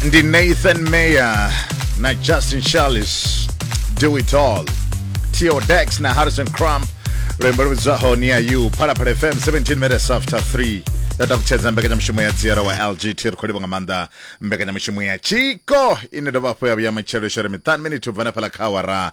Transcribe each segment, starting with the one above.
ndi nathan mayer na justin charles do it all tio dex na harrison crump lwembo luvhidzwaho ni ya u phalaphala fm 17 minutes after 3 ya takutshedza mbekanyamushumo ya dziera wa lgt ri khou livha nga maanḓa mbekanyamushumo ya tshiko ine dovha hafhu ya vhuya matshelo shore miṱanu miniti u bva na fhala kha awara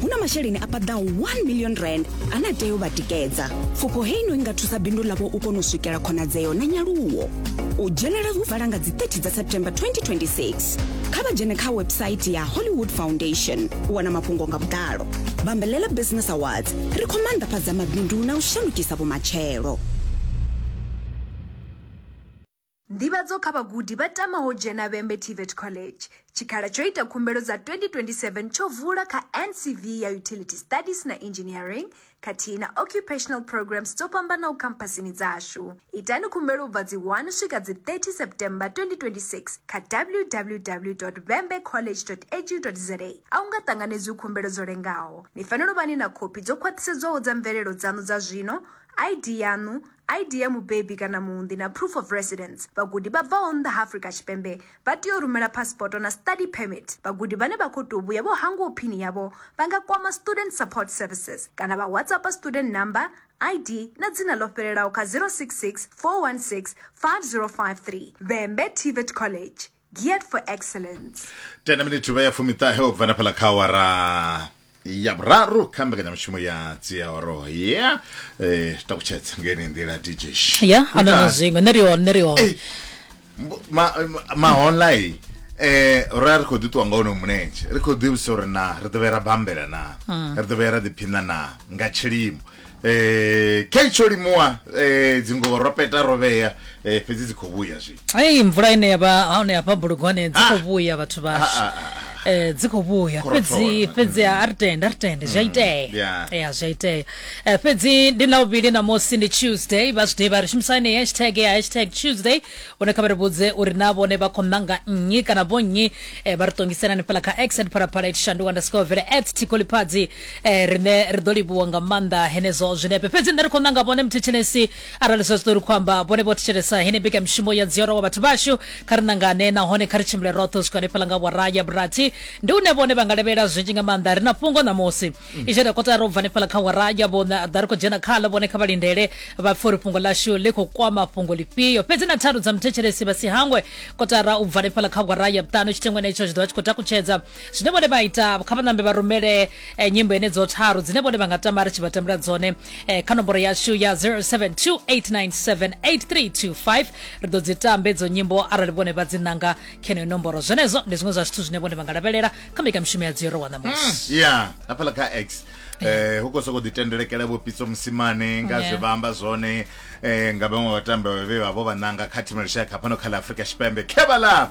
hu na masheleni a paḓaho 1 million rand ane a tea u vha tikedza pfufho hei no i nga thusa bindu ḽavho u kona u swikela khonadzeo na nyaluwo u dzhenela hu vala nga dzi 30 dza september 2026 kha vha dzhene kha website ya hollywood foundation u wana mafhungo nga vhuḓalo bambelela business awards ri khou maanḓafhadza mabindu na u shandukisa vhumatshelo Nḓivhadzo kha vhagudi vha tamaho u dzhena Vhembe TVET College. Tshikhala tsho ita khumbelo dza 2027 tsho vula kha NCV ya Utility Studies na Engineering khathihi na Occupational Programs dzo fhambanaho khamphasini dzashu. Itani khumbelo u bva dzi 1 u swika dzi 30 September 2026 kha www.vhembecollege.edu.za. A hu nga ṱanganedzwi khumbelo dzo lengaho. Ni fanela u vha ni na khophi dzo khwaṱhisedzwaho dza mvelelo dzaṋu dza zwino, ID yaṋu ID ya mubebi kana muunḓi na proof of residence. Vhagudi vha bvaho nnḓa ha Afrika Tshipembe vha tea u rumela phasipoto na study permit. Vhagudi vhane vha khou tou vhuya vho hangwaho phini yavho vha nga kwama Student Support Services kana vha WhatsAppa student number, ID na dzina ḽo fhelelaho kha 066 416 5053. Vhembe TVET College. geared for excellence tena miniti uvha ya fumiṱahe u bva na fhaḽa kha awara ya vhuraru kha mbekanyamushumo ya dziaoro ya eh, takutshedza ngeni nḓila dj ya a na na zwiṅwe nṋe ri hone nṋe ri hone mahonlai eh ra ri khou ḓi ṱuwa nga ono mulenzhe ri khou ḓivhisa uri na ri ḓo vhera bambela na ri ḓo vhera ḓiphina na nga tshilimo Eh, khe tsho limuwa eh, dzingo ro peta ro vhea eh, fhedzi dzi khou vhuya zwi ei mvula ine ya vha hone hafha bulugwane dzi khou vhuya vhathu vhashu Ah, ah, Eh, dzi khou vhuya Khorothoro. fhedzi fhedzi a a ri tende a ri tende zwi a itea yeah. ya zwi a itea Eh, fhedzi ndi ḽavhuvhili ṋamusi ndi tuesday vha zwi ḓivha ri shumisani hashtag ya hashtag tuesday hone kha vha ri vhudze uri na vhone vha khou ṋanga nnyi kana vho nnyi eh, vha ri ṱongiselani fhala kha x at phalaphala itshandu underscore vele at tikoliphadzi Eh, rine ri ḓo livhuwa nga maanḓa henezwo zwinepe fhedzi nṋe ri khou nanga vhone muthetshelesi arali zwa zwiṱori khou amba vhone vho thetshelesa hene mbekanyamushumo ya dziora wa vhathu vhashu kha ri nangane nahone kha ri tshimbile roṱhe u swika hanefhaḽa nga awara ya vhurathi ndi une vhone vha nga lavhelela zwinzhi nga maanḓa ri na fhungo ṋamusi i tshi ita kotara u bva hanefhaḽa kha awara ya vhona ḓa ri khou dzhena khaḽo vhone kha vha lindele vha pfe uri fhungo ḽashu ḽi khou kwama fhungo lifhio fhedzi na tharu dza muthetshelesi vha si hangwe kotara u bva hanefhaḽa kha awara ya vhuṱanu tshitengwa henetsho zwi ḓo vha tshi khou takutshedza zwine vhone vha ita kha vhanambe vha rumele eh, nyimbo ene dzo tharu dzine vhone vha nga tama ri tshi vha tambela dzone eh, kha nomboro yashu ya 0728978325 ri ḓo dzi tambe dzo nyimbo arali vhone vha dzi nanga kheneyo nomboro zwenezwo ndi zwiṅwe zwa zwithu zwine vhone vha nga lavhelela kha mbekamishumo ya dziro wa ṋamusi ya hafhaḽa kha x eh hu khou sokou ḓitendelekela vho pitso musimane nga Yeah. zwe vha amba zwone eh nga vhaṅwe vhatambi vhe vha vho vha nanga kha thimu ya lushaka fhano kha ḽa afurika tshipembe kevhala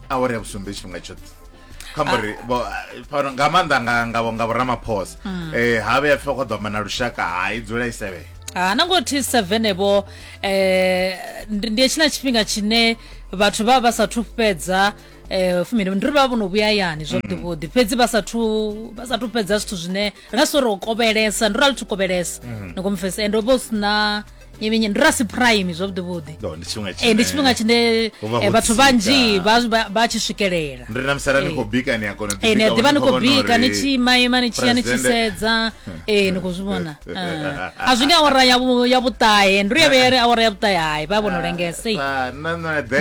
awara ya vhusumbe tshifhinga tshoṱhe khamba uri ah. vho fhano nga maanḓa nga nga nga vhoramaphosa mm. eh ha vhe pfa kho ḓo mana lushaka ha i dzula i sevhe ha na ngo thi 7 ebo eh ndi tshina tshifhinga tshine vhathu vha vha sa thu fhedza eh fumini ndi ri vha vhono vhuya yani zwo ḓi vhodi fhedzi vha sa thu vha sa thu fhedza zwithu zwine ri nga sori o kovhelesa ndi ri a lu thu kovhelesa mm. ni komfesa ende vho sina Yevhenye, ndi rasi prime zwavhuḓi vhuḓi No, ndi tshifhinga Eh, ndi tshifhinga tshine Ho vha ho eh, vhathu tsika. vhanzhi vha vha- vha tshi swikelela ndi ri na musala ni Eh. khou bika ni a kona u Eh, ni a ḓivha ni khou bika ni tshi ima ima ni tshiya ni tshi sedza ee ni khou zwi vhona Ah. a zwi nga awara ya vhu- ya vhuṱahe ndi ya vheyere awara ya vhuṱahe hai vha vhono lengesa ei. Ah,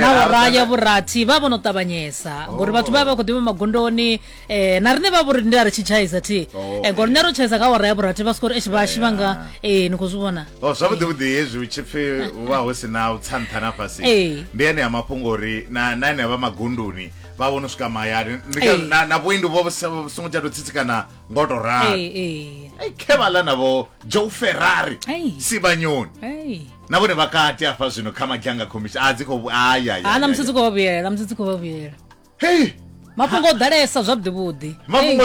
na awara ya vhurathi vha vhono ṱavhanyesa ngori vhathu vha vha vha khou ḓivha magondoni eh na rine vha vhori ndi a ri tshi tshaiza thi Oh, eh ngori nṋe ro tshaiza kha wara ya vhurathi vha sikori eshi vha shivha nga eh ni khou zwi vhona o zwavhuḓi vhuḓi hezwi hu tshi pfi hu vha hu si na u tsa nṱha na fhasi Ee. ndi ene a mafhungo uri na na ene vha magunduni vha vhono swika mahayani Ndi ka- Ee. na- na vhuendi vho vhu sa- vhu songo tsha tou tsitsikana ngo tou ralo eh eh Ai, khe vha ḽa navho joe ferrari Ai. sibanyoni eh na vhone vha kati afha zwino kha madzhanga commission a dzi khou ayaya ha na musi dzi khou vha vhuyela na musi dzi khou vha vhuyela hei mafhungo o ḓalesa zwavhuḓi vhuḓi mafhungo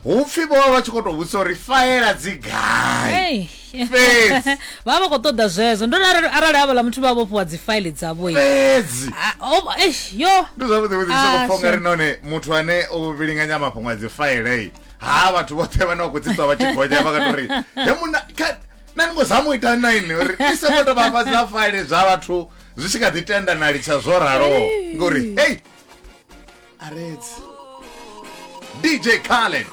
hu pfhi vho vha vha tshi khou tou vhudzisa uri faela dzi gai fhedzi vha vha khou ṱoḓa zwezwo ndo arali havhala muthu vha vhofhiwa dzi faili dzavho fhedzi yo ndi zwavhuḓi vhuḓi ndi sokou pfha ri none muthu ane o vhilinganya mafhungo a dzi failei ha vhathu vhoṱhe vhane vha khou tsitswa vha tshi gonya vha kato ri he muna na ni ngo zama u ita nine uri i songo tou vhafha dza faile zwa vhathu zwi tshi kha ḓi tenda na litsha zwo raloho ngori hey aredzi dj khaled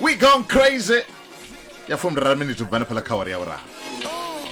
we gone crazy ya fumi raru miniti u bva na phala khawari ya vhuraha